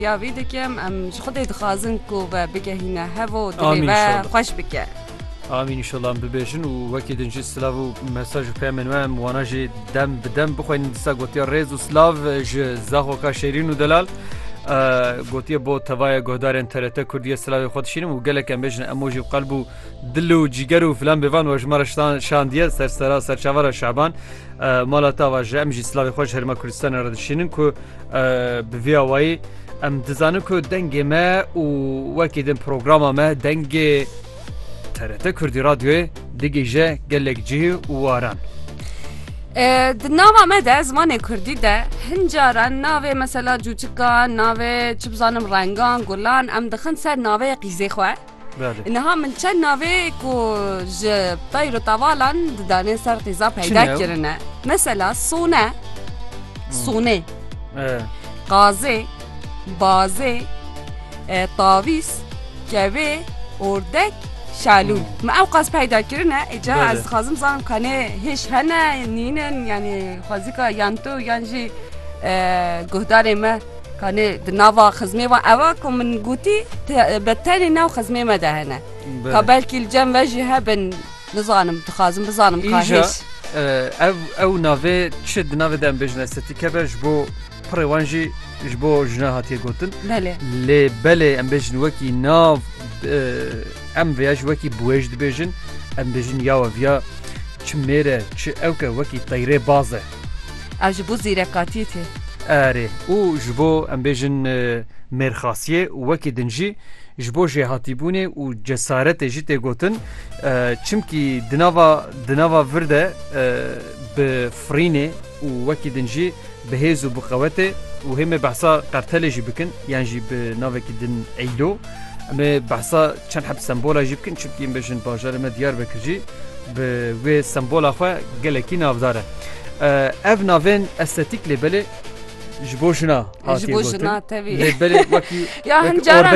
Ya vî dikim em ji Xwedê dixwazin ku ve bigehîne hev û dilê Amîn, ve inşallah. xweş bike. Amîn inşallah em bibêjin û wekî din jî silav û mesaj û peyamên we em wana jî dem bi dem bixwînin disa gotiya rêz û silav ji zaxoka Şêrîn û Delal eh, gotiye bo tevaya guhdarên TRT Kurdiyê silavê xwe dişînim û gelek em bêjin em o jî bi qelb û dil û cîger û filan bêvan we ji me re şitan- şandiye ser sera serçavara Şaban eh, mala te ava ji em jî silavê xwe ji herêma Kurdistanê re dişînin ku Bi vî awayî em dizanin ku dengê me û wekî din programa me dengê TRT Kurdî Radyoyê digihîje gelek cihê û waran. Di nava me de zimanê Kurdî de hin caran navê mesela cûçikan, navê çi bizanim rengan, gulan em dixin ser navê qîzê xwe. Niha min çend navê ku ji pey rotavalan didanên ser qîza peyda kirine. Mesela sone, sonê, qazê, bazê, tavîs, kevê, ordek, şalû. Me ew qas peyda kirine îca ez dixwazim zanim kanê hêj hene nînin yanî xwezika yan tu yan jî guhdarê me. Kanê di nava xizmê wan ew e ku min gotî bi tenê nav xizmê me de hene. Ka belkî li cem ve jî hebin nizanim dixwazim bizanim ka hêj. Ev ew navê çi di navê de em bêjin estetîke be ji bo pirê wan jî ji bo jina hatiye gotin. Belê lê belê em bêjin wekî nav em vêya ji wekî buêj dibêjin em bêjin yawe viya çi mêre çi ewke wekî teyrê baz e. Ev ji bo zîrekatiyê tê. Erê, û ji bo em bêjin mêrxasiyê û wekî din jî ji bo jêhatîbûnê û cesaretê jî tê gotin. Çimkî di nava di nava vir de bi firînê û wekî din jî bi hêz û bi qewetê û hê me behsa qertelê jî bikin yan jî bi navekî din Eylo. Em ê behsa çend heb sembola jî bikin çimkî em bêjin bajarê me Diyarbekir jî bi wê sembola xwe gelekî navdar e. Ev navên estetîk lê belê ji bo jina Ji bo jina tevî lê belê wekî ya hin caran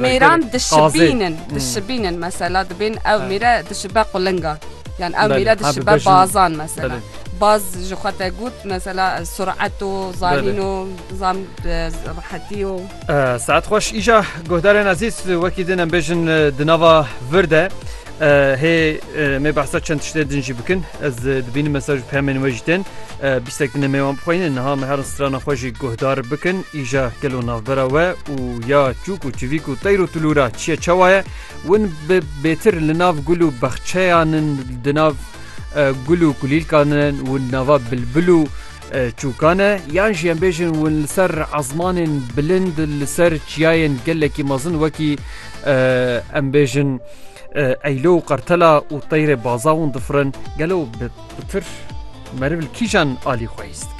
mêran dişibînin dişibînin mesela dibên ew mêre dişibe qulinga yan ew mêre dişibe bazan mesela. باز ji xwe te got mesela suret û zanîn û zam rehetî û Saet xweş îja guhdarên ezîz wekî din em bêjin di nava vir de hê mê behsa çend tiştê din jî bikin ez dibînim mesaj pemên wê jî tên bîstek din mêwan bixweynin niha me herin strana xwe jî guhdar bikin îja gelo navbera we û ya çûk û çivîk û teyr û tulûra çiye çawa ye win bi bêtir li nav gul û bexçeyanin di nav gul û kulîlkanin û nava bilbil û Çûkan e yan jî em bêjin hûn li ser ezmanên bilind li ser çiyayên gelekî mezin wekî em bêjin eylo û qertela û teyrê baza hûn difirin gelo bi tir meriv li kîjan alî xwehîst